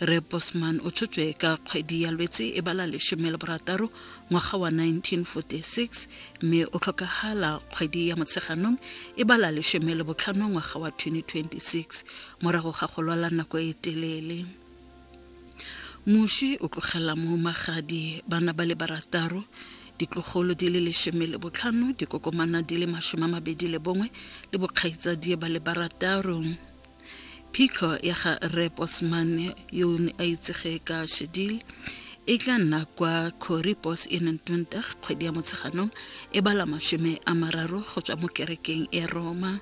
re bosman o tshotswe ka kgwedi ya lwetse e bala lesome le borataro ngwaga wa 1946 mme o tlhokagala kgwedi ya motsheganong e bala lesome le botlhano ngwaga wa 2026 morago ga go lwala nako e telele moši o tlogela mo magadi bana ba le barataro ditlogolo di le lesome le botlhano dikokomana di le masome a mabedi le bongwe le bokgaitsadie ba le barataro Phitlho ya ga Rre Bosman yo o ne a itsege ka Shedil e tla nna kwa Corrie Bos Inn and Dundalk kgwedi ya Motsheganong e bala mashome a mararo go tswa mo kerekeng ya Roma.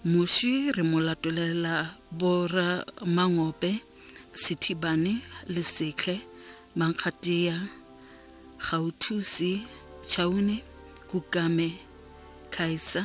Moswi re mo latolela Bora Mangope, Sethibane, Lesetlhe, Mankgatia, Gauthusi, Chaune, Kukame, Khaisa,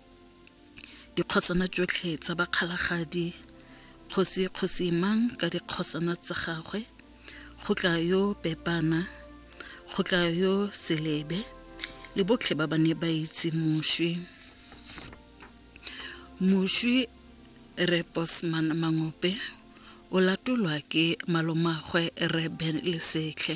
dikgosana tšotlhe tsa bakgalagadi kgosi kgosi mang ka dikgosana tsa gagwe go tla yo pepana go tla yo selebe le botlhe ba ba ne ba itse moswi moswi re bosman mangope o latolwa ke malomagwe re ben lesetlhe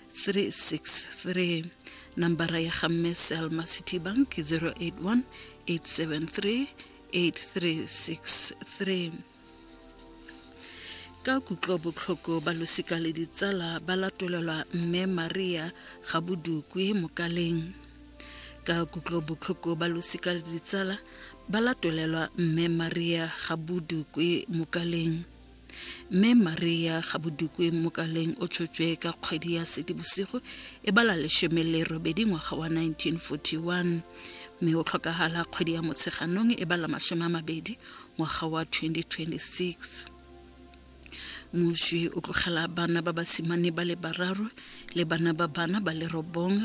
363 nambara ya ga mme selma city bank 081 873 8363 ka kutlobotlhoko ba losika le ditsala ba latolelwa mme maria ga bodukwe mokaleng ka kutlobotlhoko ba losika le ditsala ba latolelwa mme maria ga bodukwe mokaleng Mme Maria Gabodukwe Mokaleng o tshotšwe ka kgwedi ya Sedibosigo e bala leshome le robedi ngwaga wa 1941 mme o tlhokagala kgwedi ya Motsheganong e bala masome a mabedi ngwaga wa 2026 moswi o tlogela bana ba basimane ba le bararo le bana ba bana ba le robong